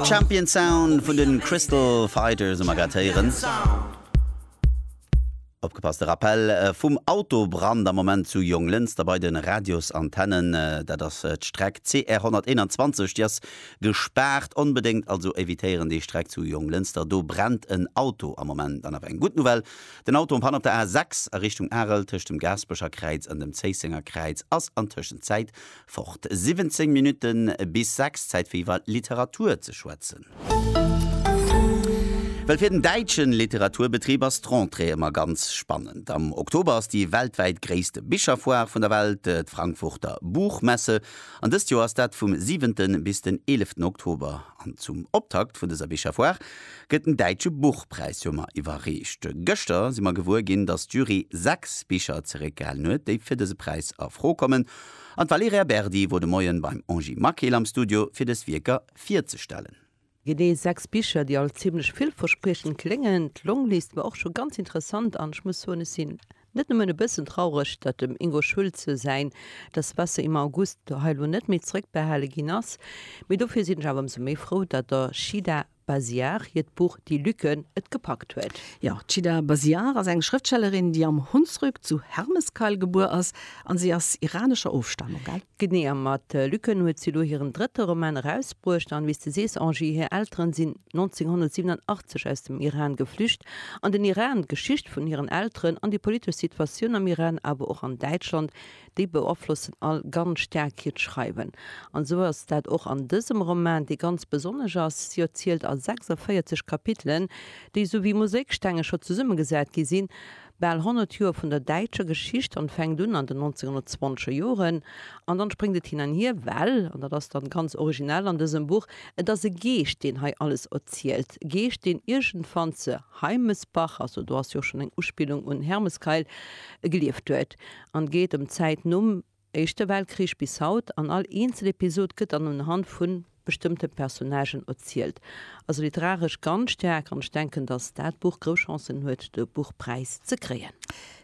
Champion Sound vun den Crystal Fighters hu mer grad héieren. Opgepasst, de Rappell vum Autobrand am Moment zu Jonglënster bei den Radiosantennen. Dat ass d'Streck CR 121, déi ass gespaart. Onbedéngt also evitéieren déi Streck zu Jonglënster, do brennt en Auto am Moment. An awer eng gutt Nouvelle, den Auto en panne op der A 6 a Richtung Arel tëscht dem Gaaspecher Kräiz an dem Zéissenger Kräiz ass an Tëschenzäit Fort, 17 Minutten bis 6, Zäit fir iwwer Literatur ze schwätzen. Well fir den däitsche Literaturbetrib ass d'Rentrée ëmmer ganz spannend. Am Oktober ass déi weltwäit gréisst Bicherfoire vun der Welt, d'Frankfurter Buchmesse. An dëst Joer ass dat vum 7. bis den 11. Oktober. An zum Optakt vun dëser Bicherfoire gëtt den däitsche Buchpräis jo mar iwwerreecht. Gëschter si mer gewuer ginn, datt d'Jury 6 Bicher zeréckgehalen huet, déi fir dëse Präis a Fro kommen. An d'Valerija Berdi wor de Moien beim Angie Maquil am Studio fir dës Wierker virzestellen. Genee 6 Bicher, déi all zimmlech villverspriechend kléngen. D'Longlist war och scho ganz interessant an ech muss soen, ech sinn net nëmmen e bëssen traureg, datt dem Ingo Schulze säin Das Wasser im August hei elo net méi zrëckbehale ginn ass, mee dofir sinn ech awer ëmsou méi frou, datt der Shida Basiar hiert Buch Die Lücken et gepackt huet. Jo, d'Shida Basiar ass eng Schrëftstellerin, déi am Hunsrück zu Hermeskeil gebuer ass an si ass iranescher Ofstamung, gell? Genee, a mat Lücken huet si elo hiren drëtte Roman erausbruecht. An wéi s de sees, Angie, hir Elteren sinn 1987 aus dem Iran geflücht an den Iran. D'Geschicht vun hiren Elteren an déi politesch Situatioun am Iran, awer och an Däitschland, déi beaflossen all ganz staark hiert Schreiwen. An esou ass dat och an dësem Roman, dee ganz besonnesch ass. Si erzielt a 46 Kapitelen, déi esou wéi Mosaikstenge scho zesummegesat gi sinn, bal 100 Joer vun der däitscher Geschicht an fänkt un an den 1920er Joren an dann spréngt et hin an hier, well, an dat ass dann ganz originell an dësem Buch, et ass e Geescht, deen hei alles erzielt, e Geescht, deen iergendwann ze Heimesbach, also do ass jo och schonn eng Uspillung un Hermeskeil, gelieft huet. an geet ëm d'Zäit nom Éischte Weltkrich bis haut an all eenzel Episod gëtt dann unhand vu bestëmmte Personnagen erzielt. Also literaresch ganz staark an ech denken, datt dat Buch grouss Chancen huet de Buchpräis ze kréien.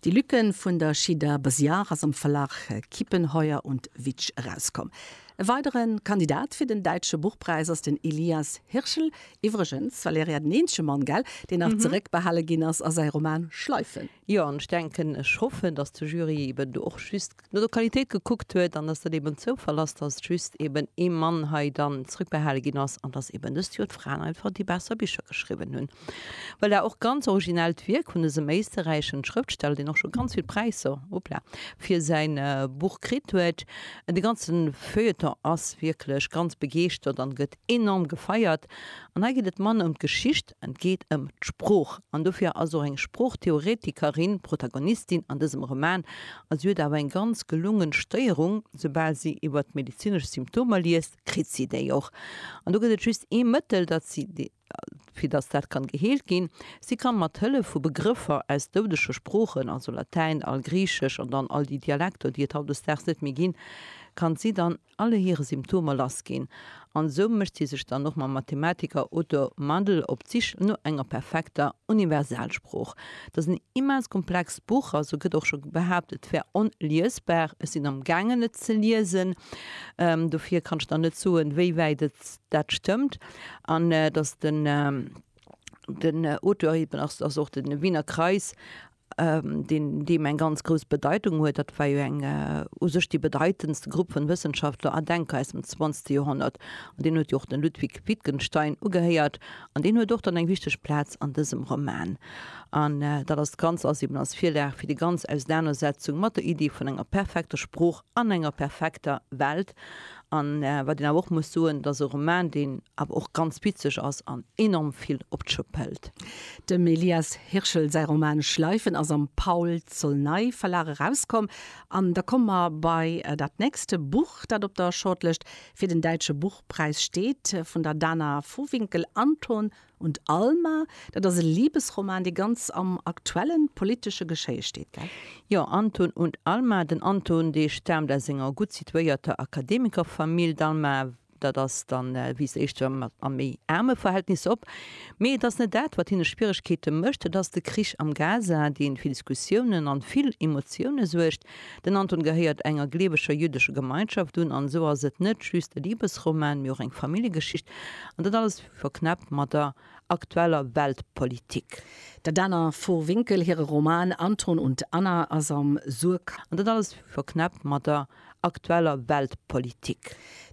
Die Lücken vun der Shida Besiar ass am Verlag Kiepenheuer und Witsch erauskomm. E weidere Kandidat fir den Däitsche Buchpräis ass den Elias Hirschl. Iwwregens, Valerija, den eenzege Mann, gell, deen nach zeréckbehale ginn ass a säi Roman Schleifen. Jo, an ech denken, ech hoffen, dass de Jury eeben do och just no der Qualitéit gekuckt huet an dass dat eeben en Zoufall ass, dass just eeben ee Mann hei dann zrëckbehale ginn ass an dass eeben dëst Joer d'Fraen einfach déi besser Bicher geschriwwen hunn. Voilà, och ganz originellt Wierk vun dësem éisterräischen Schrëftsteller, deen och scho ganz vill Präisser, hoppla, fir säin Buch kritt huet. De ganze Feuilleton ass wierklech ganz begeeschtert an gëtt enorm gefeiert. An hei geet et manner ëm d'Geschicht, Et geet ëm d'Sprooch an dofir ass och eng Sproochtheoretikerin Protagonistin an dësem Roman. A si huet awer eng ganz gelungen Stéierung, soubal si iwwert medezinesch Symptomer liest, kritt si déi och. An do gëtt et just ee Mëttel, dat si, fir datt dat kann geheelt ginn, si kann mat Hëllef vu Begrëffer aus doudege Sproochen, also Latäin, Algriichesch an dann all déi Dialekter, déi et hautdesdaags net méi ginn, kann si dann, alle hire Symptomer lass ginn, an esou mécht si sech dann och mam Mathematiker Otto Mandl op d'Sich no enger perfekter Universalsprooch. Datt en immens komplext Buch ass, sou gëtt och scho behaapt, et wär onliesbar. Ech sinn am gaangen et ze liesen, dofir kann ech der net soen, wéi wäit et dat stëmmt. An datt den Auteur eben ass, ass och de Wiener Kreis deen deem eng ganz grouss Bedeitung huet, dat war jo eng u sech déi bedeitendste Grupp vun Wëssenschaftler an Denker aus dem 20. Joerhonnert, an deen huet jo och den Ludwig Wittgenstein ugehéiert, an deen huet och dann eng wichteg Plaz an dësem Roman. An dat ass d'Ganz ass eben als Virlag fir déi ganz Ausenanersetzung mat der Iddi vun enger perfekter Sprooch an enger perfekter Welt, An wat een awer och muss soen, et ass e Roman, deen awer och ganz witzeg ass an enorm vill op d'Schopp hält. Dem Elias Hirschl säi Roman Schleifen ass am Paul-Zolnay Verlag erauskomm. An da komme mer bei dat nächst Buch, dat op der Shortlëscht fir den Däitsche Buchpräis steet, vun der Dana Vohwinkel, Anton Und Alma, dat ass e Libesroman, dee ganz am aktuelle politesche Geschéie steet, gell? Jo, Anton und Alma. Den Anton, dee staamt aus enger gutt situéierter Akademikerfamill, d'Alma, dat ass dann, wiisst Dir, éischter mat a méi aarme Verhältnisser op. Mee et ass net dat, wat hinne Schwieregkeete mécht, et ass de Krich am Gaza, dee fir Diskussiounen an vill Emotioune suergt. Den Anton gehéiert enger gleeweger jüddescher Gemeinschaft un, an esou ass et net just e Libesroman, mee och eng Familljegeschicht. An dat alles Verknäppt mat der aktueller Weltpolitik. Der Dana Vohwinkel hire Roman Anton und Anna ass am Suhrkamp. An dat alles verknäppt mat der aktueller Weltpolitik.